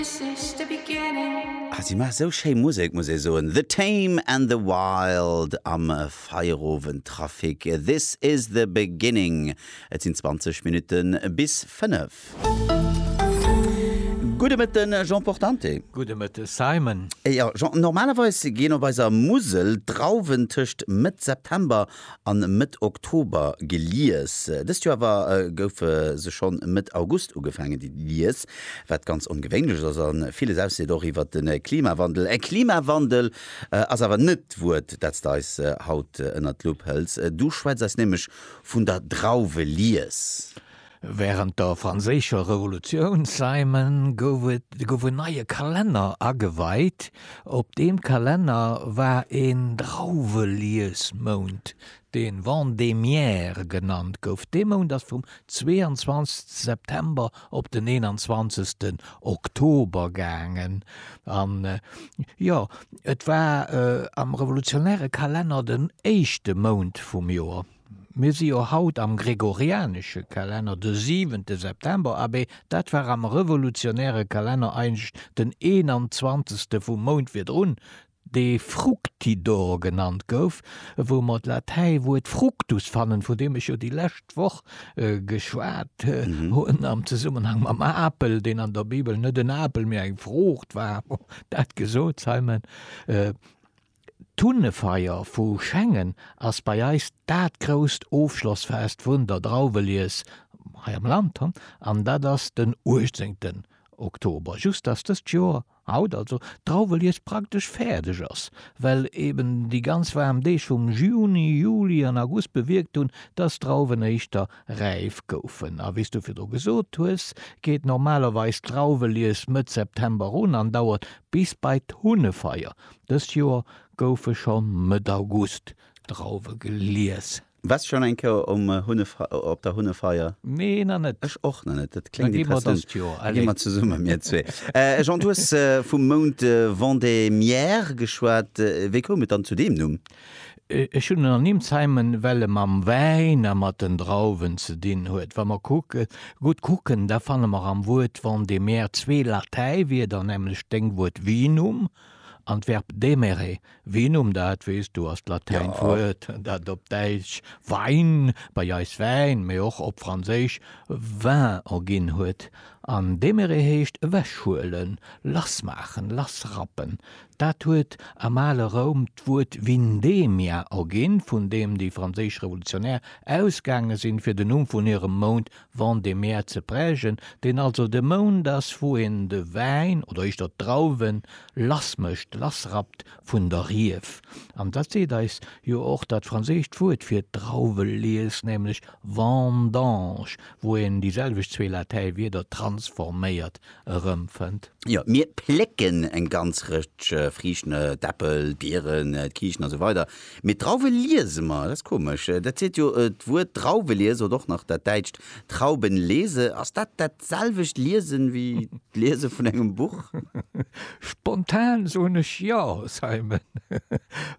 Ah, si maache sou schéi Musek, muss ee soen. The Tame and the Wild am Feierowendtrafic. This is the beginning. Et sinn 20 Minutte bis 5. Gudde Mëtte Jean Portante. Gudde Mëtte Simon. Jean, normalerweis ginn op eiser Musel d'Drauwen tëscht Mëtt September an Mëtt Oktober gelies. Dëst Joer awer goufe se schonn Mëtt August ugefaangen ze lies, wat ganz ongewéinlech ass a villes ausseet, och iwwer de Klimawandel. Äh, Klimawandel ass awer net d'Wuert, dat s de eis haut ënnert d'Lupp hëls. Du schwätz eis nämlech vun der Drauwelies. Wärend der Franséischer Revolutioun, Simon, gouf en neie Kalenner ageweit. Op deem Kalenner war een Drauweliesmount, dee Vendémiaire genannt gouf. Dee Mount ass vum 22. September op den 21. Oktober gaangen. An jo, et war am revolutionäre Kalenner den éischte Mount vum Joer. Mir si jo haut am gregorianesche Kalenner, de siwente September, abé dat war am revolutionäre Kalenner eigentlech den eenanzwanzegste vum Mount virdrun, dee fructidor genannt gouf, wou mer d'Latäiwuert fructus fannen, vun deem ech jo déi lescht Woch geschwat hunn am Zesummenhang mam Apel, deen an der Bibel net en Apel, mee eng Fruucht war. Dat gesot, Simon. D'Hunnefeier vu Schengen ass bei eis dat grousst Ofschlossfest vun der Drauwelies hei am Land an dat ass den 18 Oktober. Just dass dëst Joer, haut also, d'Drauwelies praktesch fäerdeg ass, well eben déi ganz waarm Deeg vum Juni, Juli an August bewierkt hunn, dass d'Drauwen éischter räif goufen. A wéi s du virdru gesot hues, geet normalerweis d'Drauwelies Mëtt September un an dauert bis bei d'Hunnefeier. Dëst Joer goufe scho Mëtt August Drauwe gelies. Wars schon eng Kéier um Hunnefeier op der Hunnefeier? Nee na net. Ech och na net. Dat kléngt interessant. Da gi mer dëst Joer, allez. Da gi mer zesummen mir zwee. Jean, du hues vum Mount Vendémiaire geschwat. Wéi koum et dann zu deem Numm? Ech hunn en ernimsheimen, well e mam Wäin a mat den Drauwen ze dinn huet. Wa mer kucken, gutt kucken, da fanne mer am Wuert Vendémiaire zwee Latäiwierder, nämlech d'Déngwuert Vinum, An d'Verb demere, Ween um dat weess du, ass d'latäint Wuert, dat op Däitsch Wein, bei eis Wäin, mee och op Franséisch vin erginn huet. An demere heescht ewechhuelen, lassmaachen, lassrappen. Dat huet am ale Roum d'Wuert vindemia erginn, vun deem déi franséisch Revolutionär ausgaange sinn, fir den Numm vun hirem Mount Vent de mer ze prägen, deen also de Mound ass, wou een de Wäin oder éischter d'Drauwen lass mécht, lass rappt vun der Rief. An dat seet eis jo och dat franséischt Wuert fir d'Drauwelies, nämlech vendange, wou een déi selwecht zwee Latäiwierder transforméiert erëmfënnt. Jo, mir plécken eng ganz Rëtsch Friichten, d'Äppel, d'Bieren, d'Kiichen a sou weider. Mee d'Drauwe liese mer, dat ass komesch. Dat seet jo d'Wuert Drauwe liese oder och nach dat däitscht Trauben lese. Ass dat dat selwecht Liesen wéi d'Liese vun engem Buch? Spontan soen ech jo, Simon,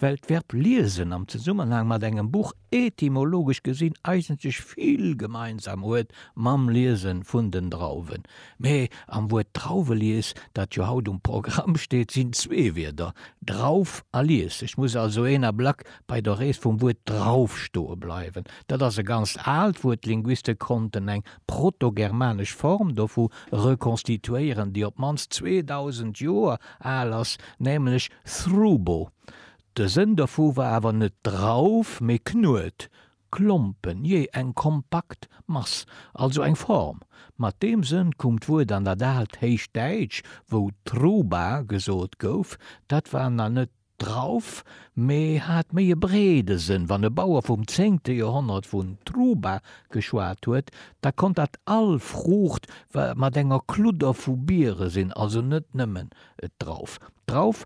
well d'Verb liesen am Zesummenhang mat engem Buch etymologesch gesinn eigenteg vill gemeinsam huet mam Liese vun den Drauwen. Mä am Wuert Drauwelies, dat jo haut um Programm steet, sinn zwee Wierder, Drauf a Lies. Et muss also een Ablack bei der Rees vum Wuert Drauf stoe bleiwen. Dat ass e ganzt aalt Wuert, d'Linguiste konnten eng protogermanesch Form dovu rekonstituéieren, déi op d'mannst 2000 Joer al ass, nämlech thrubo, De Sënn dovu war awer net Drauf, mee Knuet, Klompen, jee, eng kompakt Mass, also eng Form. Mat deem Sënn koum d'Wuert an dat aalt Héichdäitsch, wou Truba gesot gouf. Dat war nach net Drauf, mee hat méi e breede Sënn. Wann e Bauer vum zéngte Joerhonnert vun Truba geschwat huet, da konnt dat all Fruucht mat enger Kludder vu Biere sinn, also net nëmmen Drauf. Drauf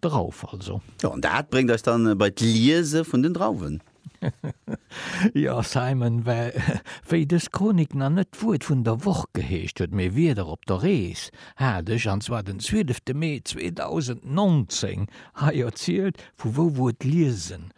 Drauf also. Jo, an dat bréngt eis dann bei d'Liese vun den Drauwen. Jo, Simon, well wéi dës Chronik nach net d'Wuert vun der Woch geheescht huet, mee Wieder op der Rees, hat ech, an zwar den zwielefte Mee 2019, hei erzielt, vu wou d'Wuert liesen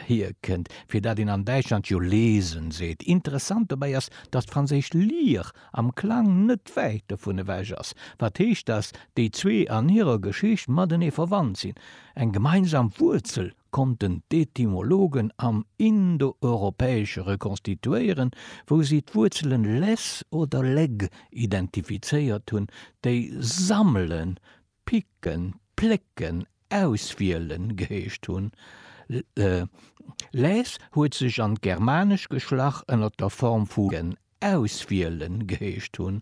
hierkënnt, fir dat een an Däitschland jo lesen seet. Interessant dobäi ass, datt d'franséisch lire am Klang net wäit dovun ewech ass, wat heescht, datt déi zwee an hirer Geschicht matenee verwannt sinn. Eng gemeinsam Wuerzel konnten d'Etymologen am Indoeuropäesche rekonstituéieren, wou si d'Wuerzele les oder leg identifizéiert hunn, déi sammelen, picken, plécken, auswielen geheescht hunn. Les huet sech an d'germanesch geschlach ënner der Form vu ken, auswielen geheescht hunn.